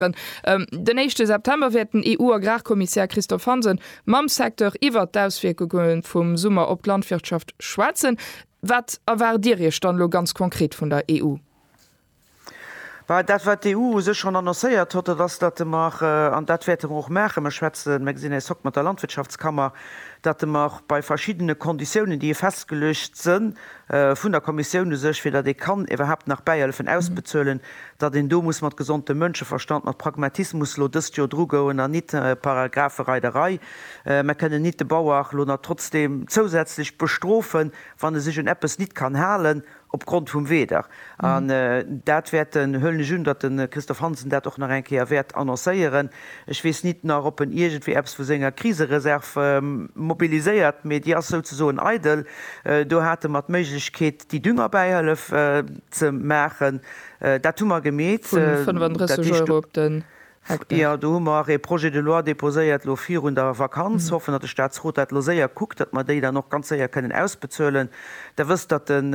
Den éischte September wäert den EU-Agrarkommissär Christophe Hansen mam Secteur iwwert d'Auswierkunge vum Summer op d'Landwirtschaft schwätzen. Wat erwaart Dir Iech dann elo ganz konkret vun der EU? Bah, dat wat d'EU u sech schonn annoncéiert hott, dat ass, datt mer, an dat wäerte mer och maachen, mer schwätzen, mer gesinn eis hokt mat der Landwirtschaftskammer, datt mer bei verschiddene Konditiounen, déi festgeluecht sënn vun der Kommissioun u sech, fir datt ee kann iwwerhaapt nach Bäihëllefen ausbezuelen, datt een do muss mat gesondem Mënscheverstand, mat Pragmatismus elo dëst Joer drugoen an nit Paragraphereiderei. Mer kënnen nit de Bauer elo nach trotzdem zousätzlech bestrofen, wann e sech un eppes nit kann halen opgrond vum Weder. An dat wäerten, huelen ech un, datt de Christophe Hansen dat och nach eng Kéier wäert annoncéieren. Ech weess nit nach, ob en iergendwéi eppes vu senger Krisereserv mobiliséiert, mee déi ass souzesoen eidel. Do hate mer d'Méiglechkeet, Déi Düngerbäihëllef ze maachen, dat hu mer gemeet. Vu 35 Euro op den Hektar. Jo, do hu mer ee Projet de loi déposéiert elo virun der Vakanz. Hoffen, datt de Statsrot dat elo séier kuckt, datt mer déi dann och ganz séier kënnen ausbezuelen. Der wësst, datt den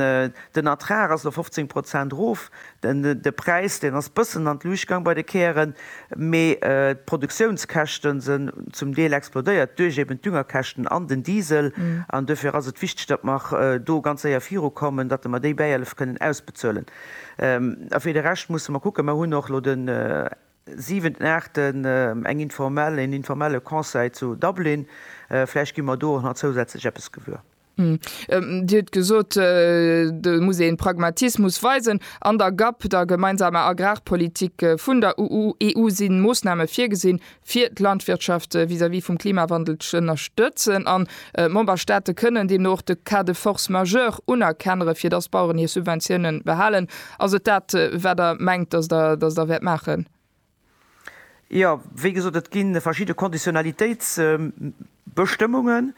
Ertrag ass elo 15 Prozent erof. De Präis, deen ass bëssen an d'Luucht gang bei de Kären, mee d'Produktiounskäschten sen zum Deel explodéiert duerch eben d'Düngerkäschten an den Diesel. An duerfir ass et wichteg, datt mer do ganz séier viru kommen, datt mer déi Bäihëllef kënnen ausbezuelen. A fir de Rescht musse mer kucken, mer hunn och elo den 7, 8 eng informell, en informelle Conseil zu Dublin, vläicht gi mer do och nach zousätzlech eppes gewuer. Hm. Dir hutt gesot, do muss ee Pragmatismus weisen. An der GAP, der gemeinsamer Agrarpolitik vun der EU, si Moossname virgesinn, fir d'Landwirtschaft vis-à-vis vum Klimawandel z'ënnerstëtzen. An d'Memberstaate kënnen deemno och de Cas de force majeure unerkennere fir dass d'Baueren hir Subventiounen behalen. Ass et dat, wat Der mengt, dass Der wäert maachen? Jo, wéi gesot, et gi verschidde Konditionalitéitsbestëmmungen,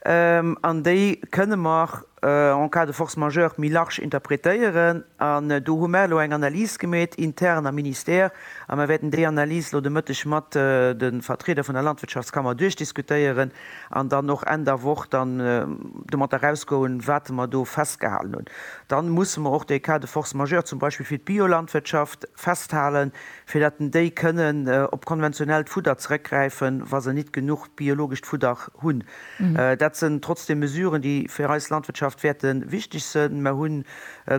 an déi kënne mer en cas de force majeure méi large interpretéieren. An do hu mer elo eng Analys gemeet intern am Ministère, a mer wäerten déi Analys elo de Mëtteg mat de Vertrieder vun der Landwirtschaftskammer duerchdiskutéieren an dann och Enn der Woch dann domat erausgoen, wat mer do festgehalen hunn. Da musse mer och dee Cas de force majeure zum Beispill fir d'Biolandwirtschaft festhalen, fir dat en déi kënnen op konventionellt Fudder zeréckgräifen, wa se nit genuch biologescht Fudder hunn. Dat sen trotzdem Mesuren, déi fir eis Landwirtschaft wäerte wichteg sen. Mer hunn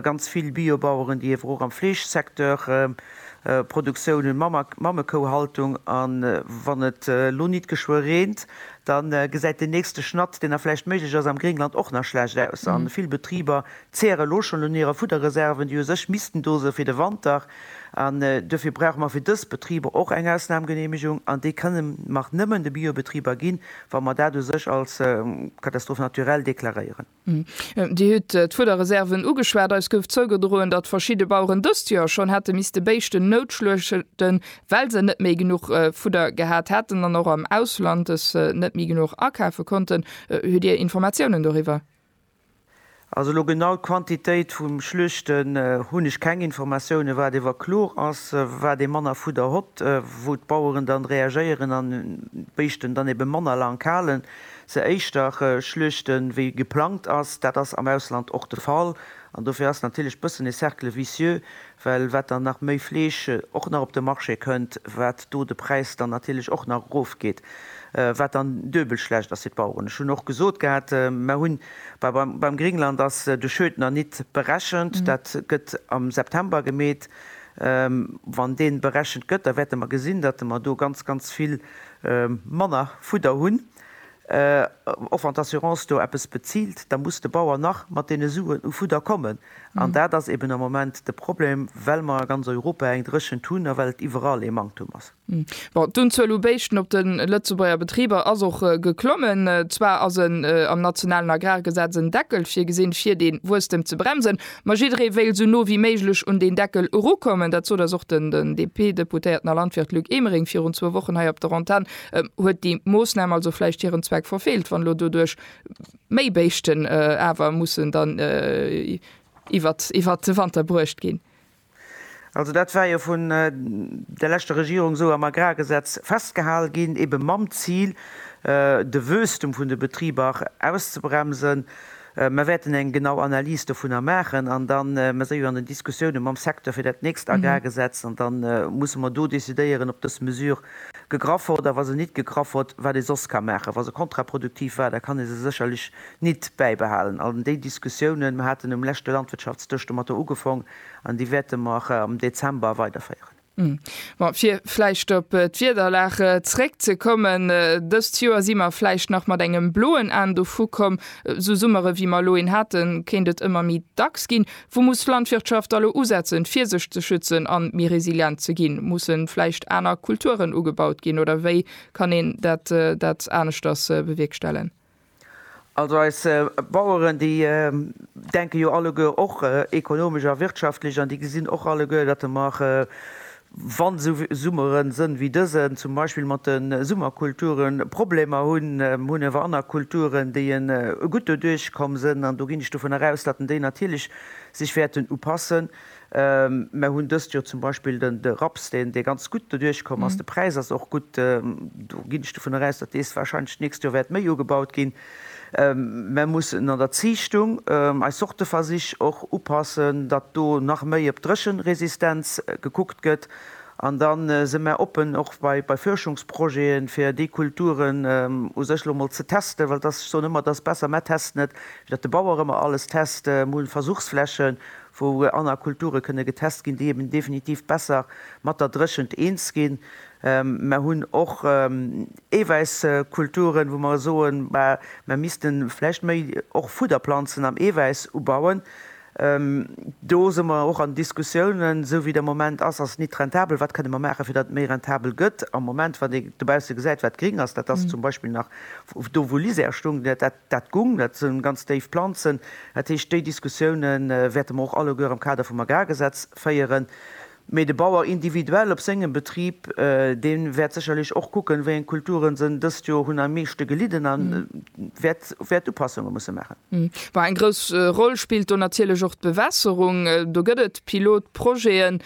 ganz vill Biobaueren, déi ewer och am Fleeschsecteur Produktioun hunn, Mammekouhaltung. A wann et elo nit geschwë reent, da gesäit den nächste Schnatt, deen da vläicht méiglech as am Gréngland, och nach schlecht aus. A vill Betriber Zeere lo schonn un hire Fudderreserven, déi u sech missten do sinn fir de Wanter. An duerfir brauche mer fir dës Betriber och eng Ausnahmgenehmigung. An déi kënne mer nëmmen de Biobetriber ginn, wa mer dat u sech als Catastrophe naturelle deklaréieren. Dir hutt d'Fudderreserven ugeschwat. Eis gouf zougedroen, datt verschidde Baueren dëst Joer schonn hätte misste Béischten noutschluechten, well se net méi genuch Fudder gehat hätten an och am Ausland es net méi genuch akafe konnten. Hutt Dir Informatiounen doriwwer? Also elo genau d'Quantitéit vum Schluechten hunn ech keng Informatiounen. Wat ewer kloer ass, wat ee manner Fudder hott, wou d'Baueren dann reagéieren an d'Béischten dann eben manner laang halen, se éischter schluechten wéi geplangt ass. Dat ass am Ausland och de Fall an dofir ass natierlech bëssen e Cercle vicieux, well wat dann nach méi Fleesch och nach op de Marché kënnt, wat do de Präis dann natierlech och nach erofgeet, wat dann duebel schlecht ass fir d'Baueren. Ech hunn och gesot gehat, mer hunn beim Gringland ass de Schödner Nit berechent, dat gëtt am September gemeet, wann dee berechent gëtt, da wäerte mer gesinn, datt mer do ganz, ganz vill manner Fudder hunn, och wann d'Assurance do eppes bezilt, da muss de Bauer nach mat deene Suen u Fudder kommen. An dat ass eben am Moment de Problem, well mer a ganz Europa eng Dréchent hunn a well et iwwerall ee Manktum ass. Bon, d'Unzuel u Béischten op de Lëtzebuerger Betriber ass och geklommen. Zwar ass en am nationalen Agrargesetz en Deckel virgesinn, fir dee Wuesstem ze bremsen, ma jidderee wéilt esou no wéi méiglech un deen Deckel erukommen. Dat sot eis och den DP-Deputéierten a Landwirt Luc Emering virun zwou Wochen hei op der Antenn. Huet déi Moossnam also vläicht hiren Zweck verfeelt, wann elo doduerch Méi Béischten awer mussen dann iwwert de Wanter bruecht ginn. Also dat war jo vun der leschter Regierung esou am Agrargesetz festgehal ginn, ebe mam Zil, de Wuesstum vun de Betriber auszebremsen. Mer wäerten eng genau Analys dovunner maachen an da mer si jo an den Diskussioune mam Secteur fir dat nächst Agrargesetz an da musse mer do decidéieren, ob dës Mesür gegraff hott, a wa se nit gegraff hott, wat ee soss ka maachen. Wa se kontraproduktiv war, da kann ee se sécherlech nit bäibehalen. An déi Diskussiounen, mer haten um leschte Landwirtschaftsdësch domatter ugefong, an déi wäerte mer am Dezember weiderféieren. Mä fir vläicht op d'Wiederlag zréckzekommen, Dëst Joer si mer vläicht nach mat engem bloen Aen dovukomm. Esou Summere wéi mer elo een haten, kéint et ëmmer méi dacks ginn. Wou muss d'Landwirtschaft da lo usetzen, fir sech ze schützen a méi resilient ze ginn? Mussen vläicht aner Kulturen ugebaut ginn oder wéi kann een dat aneschters bewierkstellen? Also eis Baueren, déi denken jo alleguer och ekonomesch a wirtschaftlech an déi gesinn och alleguer, datt de mar Wa sou Summere sënn wéi dësen, zum Beispill mat de Summerkulturen, Problemer hunn, hunn ewer anner Kulturen, déi e gutt doduerch komm sënn, an do ginn ech dovun eraus, datten déi natierlech sech wäerten upassen. Mer hunn dëst Joer zum Beispill den de Raps, deen dee ganz gutt doduerch komm ass. De Präis ass och gutt. Do ginn ech dovun eraus, datt dees wahrscheinlech d'nächst Joer wäert méi ugebaut ginn. Mer mussen an der Ziichtung eis Sorteversich och upassen, datt do nach méi op d'Dréchenresistenz gekuckt gëtt. An da si mer oppen och bei Fuerschungsprojete fir déi Kulturen u sech elo mol ze testen, well et ass, ech soen ëmmer et ass besser mer testen et, wéi datt de Bauer ëmmer alles test. Mer hu Versuchsflächen, wou aner Kulture kënne getest ginn, déi eben definitiv besser mat der Dréchent eens ginn. Mer hunn och Eewäisskulturen, wou mer soen, bah, mer misste vläicht méi och Fudderplanzen am Eewäiss ubauen. Do si mer och an Diskussiounen. Esou wéi de Moment ass, ass et net rentabel. Wat kënne mer maachen, fir datt et méi rentabel gëtt? Am Moment, wann ee dobausse gesäit, wat gring ass, dat ass zum Beispill nach do, wou Lisière stung, dat gung, dat si ganz déif Planzen. Dat heescht, déi Diskussioune wäerte mer och alleguer am Kader vum Agrargesetz féieren. Mee de Bauer individuell op sengem Betrib, dee wäert sécherlech och kucken, wéi eng Kulturen se dëst Joer hunn am meeschte gelidden a wäert Upassunge musse maachen. Bon, eng grouss Roll spillt do natierlech och d'Bewässerung. Do gëtt et Pilotprojete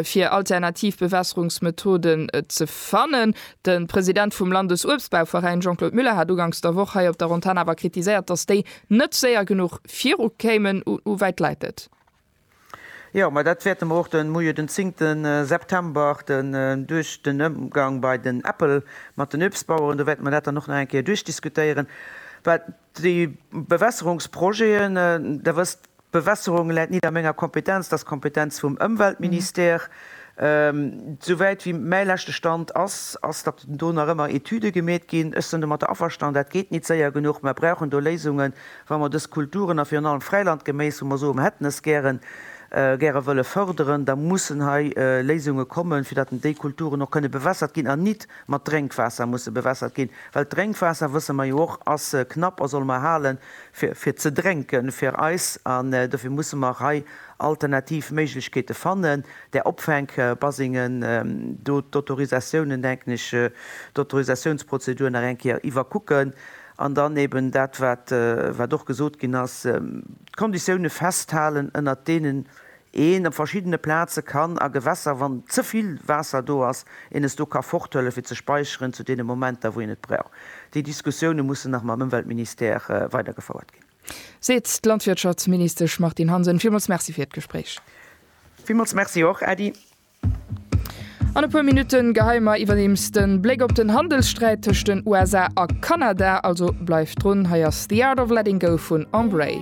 fir alternativ Bewässerungsmethoden ze fannen. De President vum Landesuebstbauveräin Jean-Claude Muller hat uganks der Woch hei op der Antenn awer kritiséiert, datt déi net séier genuch virukéimen. Hu wäit läit et? Jo, ma dat wäerte mer och de Moie den 10 September den duerch den Ëmgang bei den Apple mat den Uebstbaueren, do wäerte mer dat dann och nach eng Kéier duerchdiskutéieren. Wat déi Bewässerungsprojeten, Der wësst, d'Bewässerung läit nit a menger Kompetenz, dat ass d'Kompetenz vum Ëmweltministère. Souwäit wéi mäi leschte Stand ass, ass, datt do nach ëmmer Etüde gemeet ginn. Ech sinn domatter averstanen, dat geet nit séier genuch. Mer brauchen do Léisungen. Wa mer dës Kulturen, a virun allem Fräilandgeméis, wou mer soen, hätten es gären, gäre wëlle förderen, da mussen hei Léisunge kommen, fir datt déi Kulturen och kënne bewässert ginn an nit mat Drénkwaasser musse bewässert ginn. Well d'Drénkwaasser, wësse mer jo och, ass knapp a solle mer halen, fir, fir ze drénken, fir eis. An dofir musse mer hei alternativ Méiglechkeete fannen. Där Opfänk-Basingen, do d'Autorisatiounen, denken ech, d'Autorisatiounsprozedur nach eng Kéier iwwerkucken. An dann eben dat, wat och gesot ginn ass, d'Konditioune festhalen, ënnert deenen een op verschiddene Plaze kann a Gewässer, wann ze vill Waasser do ass, een es do ka forthëlle fir ze speicheren zu deene Momenter, wou een et brauch. Déi Diskussioune mussen nach mam Ëmweltministère weidergefouert ginn. Seet d'Landwirtschaftsministesch Martine Hansen. Villmools Merci fir d'Gespréich. Villmools Merci och, Äddi. An e puer Minutten geheie mer iwwerdeems den Bléck op den Handelssträit tëscht den USA a Kanada, also bleift drun. Hei ass The Art of Letting Go vun Embrae.